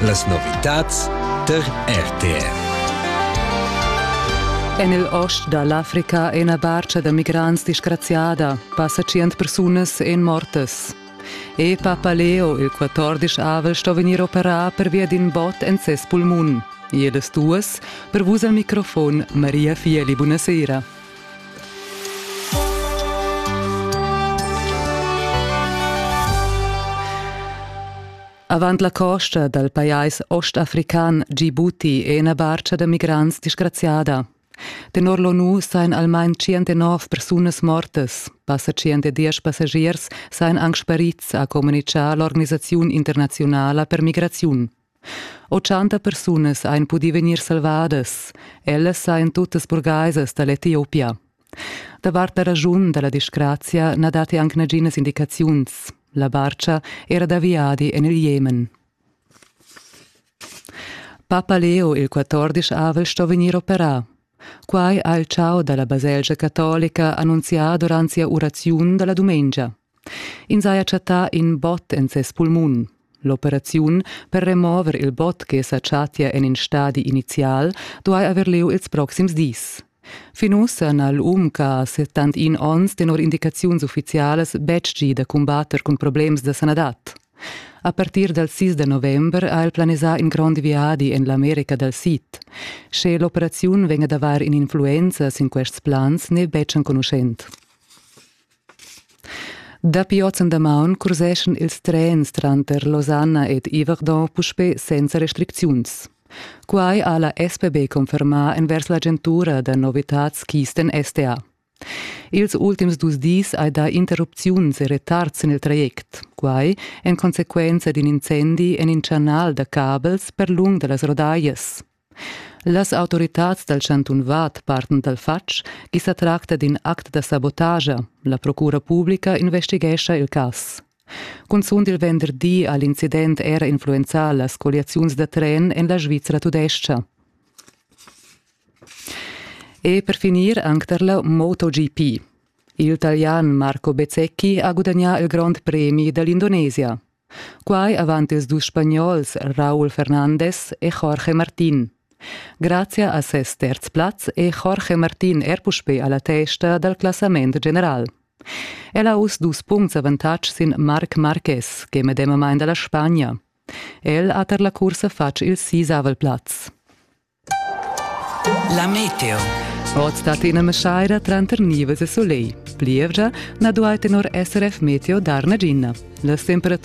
Las novitads tar RTV. En il ost da l'Africa è ina barcha da migrants disgraziada. Passa tschient persunas èn mortas. E Papa Leo, il 14 avel, sto vegnir operà pervia d'in bot en ses pulmun. Iedas duas, per vus al microfon, Maria Fieli, buonasera. Avant la costa dal pajais ostafrican Djibouti è ina barca da migrants disgraziada. Tenor l'ONU seien almain 109 persunas mortas. Passa 110 passagiers seien anche sparids, ha communicato l'organisazione internazionale per migrazione. 80 persunas ein pudi vegnir salvadas. Ellas ein tuttas burgaisas dall'Etiopia. Davart la raschun dalla disgrazia na datti anc naginas indicaziuns. La barca era da viadi en il Jemen. Papa Leo il 14 avel sto vegnir operà. Quai ha il ciao dalla baselgia catolica annunzià durant sia uraziun dalla dumengia. Ins haja chattà in bot en ses pulmun. L'operaziun per remover il bot che sa chattia en in stadi inizial duai haver lieu ils proxims dis. Fin ussa n'ha l'um ch'ha 71 onns tenor indicaziuns uffizialas betg gì da cumbatter cun problems da sanadad. A partir dal 6 da november ha el planisà in grond viadi en l'America dal Sid. Sche l'operaziun vegn ad avair in'influenza sin quests plans n'è betg enconuschent. Dapi oz en damaun curseschan ils trens tranter Losanna ed Yverdon puspè senza restricziuns. Quai ha la SPB confermà envers l'agentura da novitads Kisten STA. Ils ultims dus dis hai dà interrupziuns e retards en il traject, quai en consequenza d'in incendi en in chanal da cabels per lung da las rodaglias. Las autoritads dal chantun Vad partan dal fatg ch'i sa tracta d'in act da sabotagia. La procura publica investighescha il cas. Cunzunt il venderdi ha l'incident era influenzà las colliaziuns da tren en la Svizra tudestga. E per finir anche per la MotoGP. Il Italian Marco Bezzecchi ha gudagnà il Grond Premi dall'Indonesia. Quai avant ils dus spagnols Raúl Fernandez e Jorge Martín. Grazia a ses terz plaz è Jorge Martín er puspè a la testa dal classament general. El ha uss dus puncts avantatg sin Marc Marquez, che è medemamain da la Spagna. El ha tar la cursa fatg il sisavel plaz. La meteo. Oz stat ina meschaira tranter nivas e soleil. Plievgia na duai tenor SRF Meteo dar nagina. Las temperaturas